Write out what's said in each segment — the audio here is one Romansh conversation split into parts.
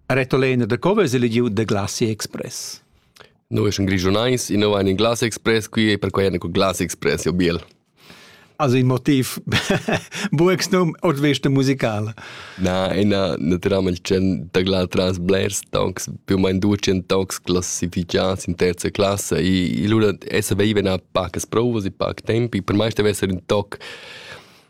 Retolena da co vesa elegiu da Glasi Express? Noi sun grigiunais, in ein in Glass Express qui e per quai en Glass Express jo biel. Also in motiv buex num ord vesta musicala. Na, ina naturalment c'en da gla tras blers tonks, più mein ducen tonks classificads in terza classe e lura essa veiva na pacas provas e pac tempi, per mai stevesser un toc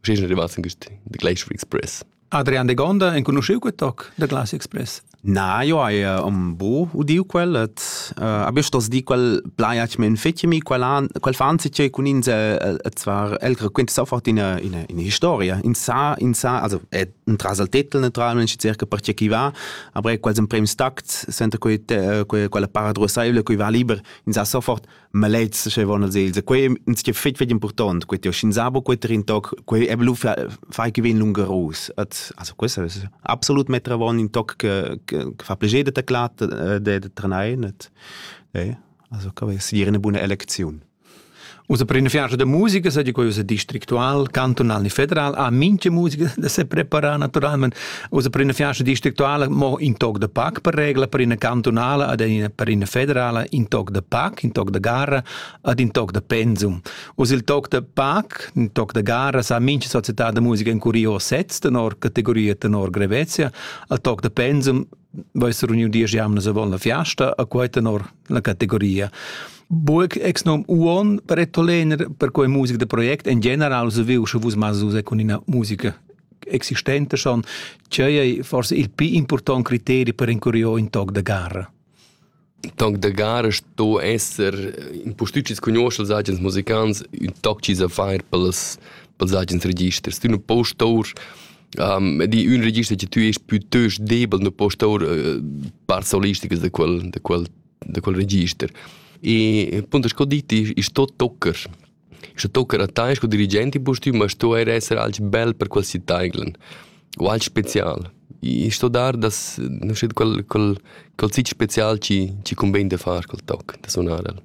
Sch'ins è rimasto in questi The Glacier Express. Adrian de Gonda, enconosciu quel toc The Glacier Express? Na, io hai un bo udiu quel, et uh, abbius tos di quel plaiac men fetimi, quel, an, quel fanzi che cun ins et zwar el raquenta sofort in in in historia, in sa in sa, also è un trasal tetel naturalmente circa perché chi va, aber quels in prem stact, senta quei quella para drosaevle, qui va liber, in sa sofort ma lezza sche von als els quei ins che fit fetg important quei tio shin sabo quei trin toc quei e blu fai che vin lungarus at also questo ist absolut metra von in toc che che fa pleger de taclat de de tranein et eh also ka wir sier eine buone elektion Usa per una fianza de musica, sa di quella districtual, cantonal e federal, ha minche musica da se preparar naturalmente Usa per ina fiasta districtuala mo in toc de pac per regla per ina cantunala ad ina per ina federala in toc de pac, in toc de gara ad in toc de pensum. Usa il toc de pac, in toc de gara sa mincha società de musica in curio sets tenor categoria tenor grevezia, al toc de pensum vais runiu dies jamnas avon la fiasta a quei tenor la categoria. Burg ex nom uon per ettolener per quei musica de project en general se viu sche vus mas usa con ina musica existenta schon, tgei ei forse il più important criterio per incuriò in toc de gara? Il toc de gara sto esser in postücis conoscel agens musicants un toc ci sa far pels pels agens registers. Tu nu post tour um, di un register che tu es piuttosto debel no post tour uh, par solisticas de quel de quel de quel register. E punto sco diti is tot tocker Sche tocca a tai sco dirigent impustüm a stuair esser alch bel per quel sitainglen u alch special. I sto dar da schet quel quel quel sitg special chi chi cumbain da far quel toc, da sunar el.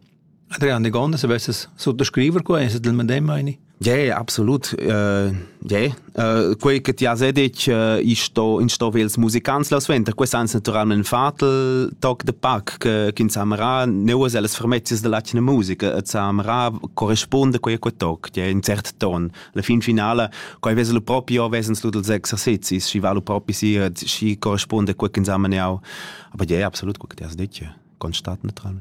Adrian Degonda, se vesses suttascriver qua, es el medem, meini? Ja, ja, absolut. Uh, ja, Uh, quei che ti has detg uh, ich sto in sto vels musicants la sventa quei sans naturalment fatel toc de pac che kin samra neuas alles fermezias de latine musica et samra corresponde quei quei toc che in cert ton la fin finale quei vesel proprio vesens lu dels exercizis si valu propri si si corresponde quei kin samra aber ja absolut quei che ti has detg constat neutral.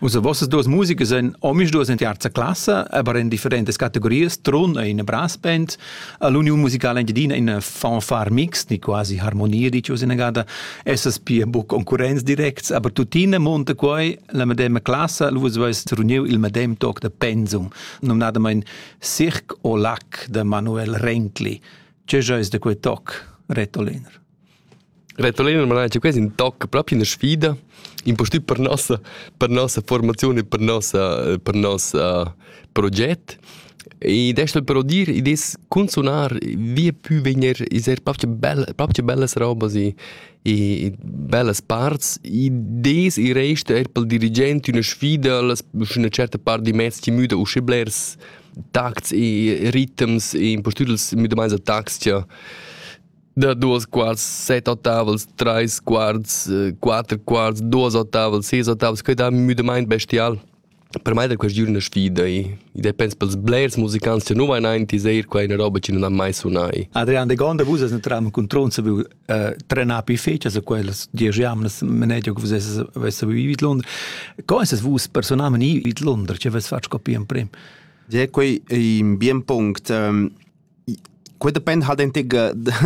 Usa vossas duas musiche sind omisch duas in terza classe, aber in differentes categorias, trun e in brass band. L'union musicale engiadina in fanfare mixed, ni quasi harmonia dici usa in gada, essas pia buc concurrenz directs, aber tuttina monta quei la medema classe, lu vais reuniu il medem toc de pensum, nominadament Cirque au lac de Manuel Renkli. Ce jois de quei toc, Retoliner? Retolina mi ha quest in toc propi ina sfida, impustüt per nossa per nossa formaziun e per nossa per nossa proget. Ed es però dir, id es cun sunar via pü vegner es eir propcha bella propcha bellas robas e e bellas parts. Id es il rest eir pel dirigent üna sfida, las üna certa part di mezs chi müda usche blers tacts e ritms e impustüt els müdamaints da tacs cha da duos quarts, set ottavels, trais quarts, äh, quatter quarts, duos ottavels, seis ottavels, que da müdamaint bestial. Per mai da quest giorno sfida i. I depends pels blers musicants che nu vain aint, eir qua una roba che nun ha mai sunai. Adrian de Gonda, vus as entram cun Tronza, vu äh, trenar pi fecias a quellas diesch jamnas, menegia che vus avessi vivit Londra. Co es vus personalment vivit Londra, ce avessi fatg copia in prim? Ja, quei è un bien punct. Ähm, quei depend halt ente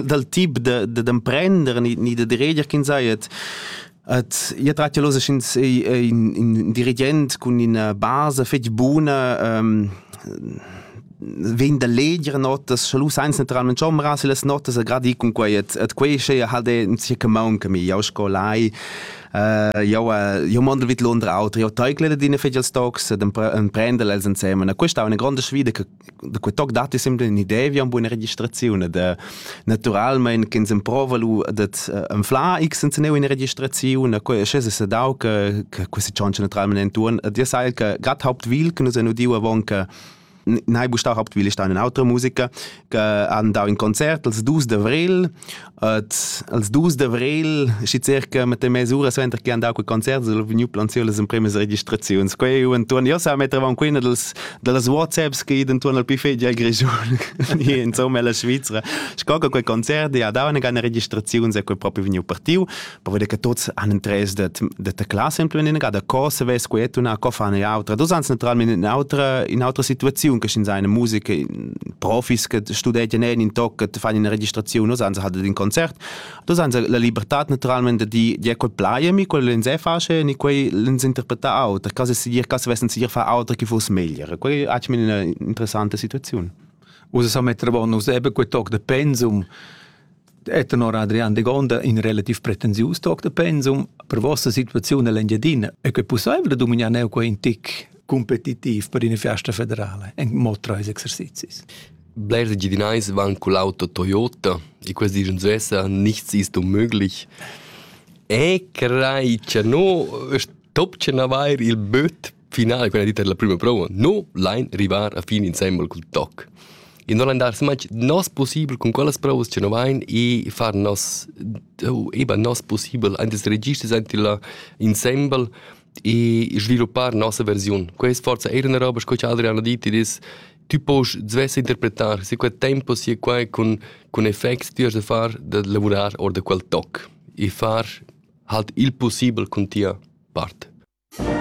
dal tip da d'emprender ni ni da diriger ch'ins ei et et io trat jelo sch'ins ei in dirigent cun ina basa fetg buna vegn da leger notas sche lu sainz naturalment chombrar si las notas e gradi cun quei et et quei sche halt è in sia maun che mi jau scolai jau jau mondel vid l'undra autra io teucle da dine fetg als tocs ed emprendel els insemen e questa è una grande sfida che da quei toc datti sempre un'idea vi a buona registrazione da naturalmente che ins improva lu dat enfla x senza ne una registrazione quei es se dau che che questi chance naturalmente intorn dir sai che grad hauptwil che nus hanno diu avon che Nei bustau hauptwil ist eine autre Musiker, che han dau in Konzert als 2 d'avril Et als dus d'avril, schi circa mit mesura suenter che han dau quei concert, ha vegniu planziu las empremas registraziuns. Quei eu entuorn, io sa mettevan quina dels dallas WhatsApps che entuorn al piffegia Grischun, insomma la Svizzera. Sco che quei concert ja dau una gana registraziuns e quei propi vegniu partiu. povede che tuts han interess de de ta classe implementieren gerade co se ves quet una co fan autra dus ans naturalmente in autra in autra situation che in seine musica profis che studenten in in toc che fanno una registrazione dus ans hat in concert dus ans la libertà naturalmente di di quel plaie mi quel len se face ni quei len interpreta autra case si dir case vessen si fa autra che fosse meglier quei hat mir una interessante situazione Usa sa metter bonus eben quel toc de pensum E tenor Adrian Degonda in relativ pretensius toc da pensum per vossa situaziun all'Engiadina è que possibile da dominar neu quei in tic competitiv per in festa federale en mod treis exercizis? Blers Engiadinais van con l'auto Toyota e questi dicono svessa nichts ist unmöglich. E crei che no top che avair il böt finale quella dita della prima prova no lein rivar a fin insembel cul toc e non lein dar smatg nos possibel con quellas provas che no vein e far nos eba nos possibel antes registers ante la insembel e sviluppar nossa versiun quest forza era una roba sco che Adrian ha dit dis tu pois svesse interpretar se quel tempo si quai con con effects ti has da far da lavurar or da quel toc e far halt il possibel con tia part